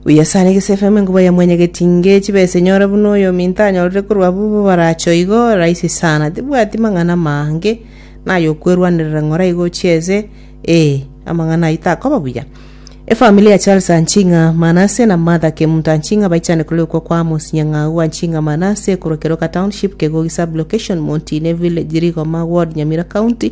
Buya sana egese efemu enkuba ya mwenye getinge chibesa enyora buna oyominto anyorire korwa abwo bobaracho igo rahisi sana tibwati mang'ana mange naye okwerwanerera ng'ora igo chieze ee amang'ana ayio takoba buya Efamili ya Charles Anchinga Manase na Martha Kemunto Anchinga baichane korwa okwo kwa Amos Nyang'au Anchinga Manase korwa Keroka Township, Kegogi Sub-Location, Montine Village, Rigoma Ward, Nyamira County,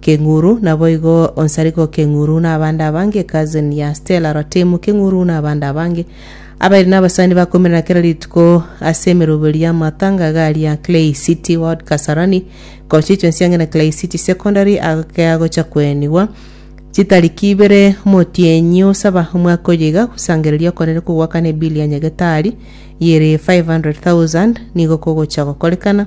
Keng'uru, naboigo onsarigwe Keng'uru na abande abange, cousin ya Stella Rotemu Keng'uru na abande abange, abairi nabasani bakoimerana kera rituko ase emeroberio y'amatanga iga aria Clay City Ward Kasarani, gocha chionsi ang'e na Clay City Secondary agakea gocha koenigwa chitariki ibere Omotienyi osaba omwaka oyo iga gosangereria okonene kogwakana ebili ya nyagetari y'ere 500,000 nigo kogocha gokorekana,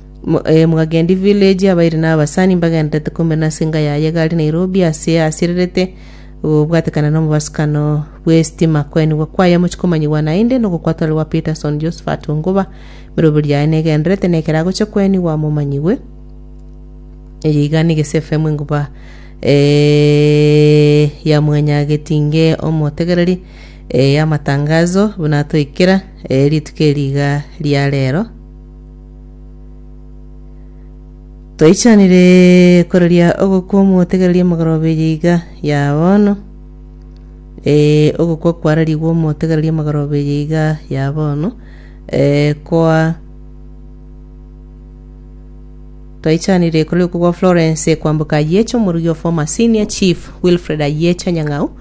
Mo- eh, Mogagendi Village abairi na abasani mbagenderete kome nase enga yaye egari Nairobi ase asirerete gobwatekana nomobasukano bw'esitima koenigwa kwaye mochi komanyigwa naende nogokwatore gwa Peterson Josephat Onguba emeroberio yaye negenderete na ekero agocha koenigwa momanyigwe eye iga niga ase FM enguba eh, ya mwanyagetinge omotegereri eh, amatangazo buna atoikera eh, rituko eri iga ria rero Toichanire koreria ogokwa omotegereria mogoroba eye iga ya bono. Eh, ogokwa kwarerigwe omotegereria mogoroba eye iga ya bono. Eh, kwa twaichanire kore okwo kwa Florence kwamboka Ayecho omorugi of former senior chief Wilfred Ayecho Nyang'au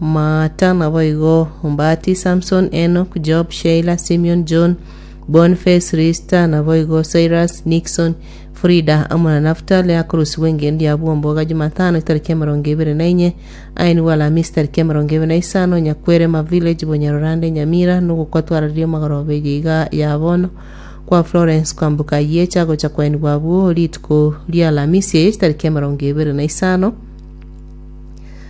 Maata, naboigo Mbati, Samson, Enoch, Job, Sheila, Simeon, John, Boniface, Lista, naboigo Cyrus, Nixon, Frida, amo na Naftali, akorusigwa engencho ya bwomboga Jumatano etariki emerongo ebere na inye, ainigwe Alamisi tariki emerongo ebere na isano, Nyakwerema Village, Bunyarurande, Nyamira, nogokwa twarareria omogorobeyo iga ya bono kwa Florence kwamboka Yiecha gocha kwainigwa abwo rituko ria Alamisi eye chitariki emerongo ebere na isano,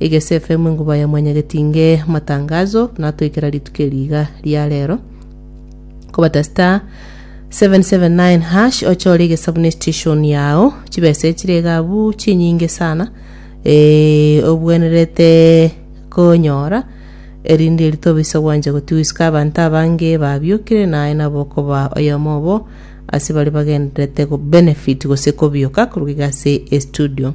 Egese FM enguba ya mwanyagetinge matangazo natoikera rituko eri iga ria rero kobata star 779 hash ochore egesabu ne station yao chibesa echire iga abu chinyinge sana eh, obwenerete konyora erinde eri tobisa gwanja gotiwisika abanto abange babiokire naye nabo okoba oyomo obo ase bare bagenderete go benefit gose kobioka koruga iga ase estudio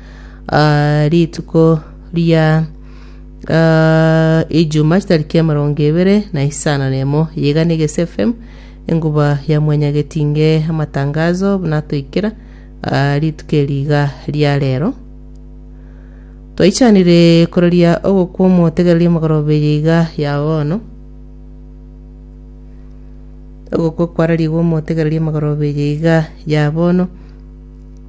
ah, rituko ria ah, ijuma chitariki emerongo ebere na isano na emo yega na egesi fm enguba ya mwenyagetinge amatangazo buna toikera ah, rituko eriga ria rero twaichanire kororia ogokwa omotegereri omogorobe yeiga ya bono ogokwa kwararigwe omotegereri omogorobe yeiga ya bono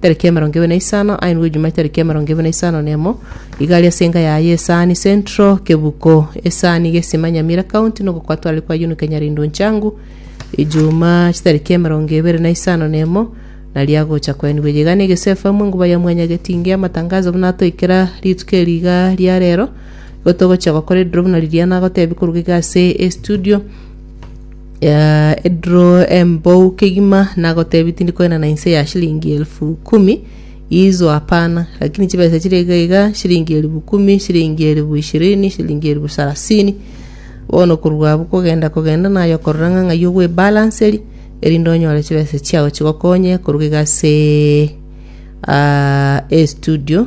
Tariki emerongo ebere na isano aye nigwo Ijumaa tariki emerongo ebere na isano na emo igari ase enka yaye ya Esaani Central, Kebuko, Esaani, Gesima, Nyamira County, nogokwatorari kwa Yunuke Nyarindo Nchang'u, Ijumaa chitariki emerongo ebere na isano na emo naria agocha koenigwa eyeiga na egesu FM enguba ya Mwanya Getinge amatangazo buna atoikera rituko eri iga ria rero igo togochia gokora ediro buna riria nagotebi koruga iga ase estudio Aa, edro embou kegima nagotebi tindi koenana inse ya shilingi elfu kumi izo hapana lakini chibesa chire iga iga shilingi elfu kumi shilingi elfu ishirini shilingi elfu sarasini bono korwa abwo kogenda kogenda naye okorora ng'a ng'ai ogwebalanceria erinde onyore chibesa chiao chigokonye koruga iga ase aa estudio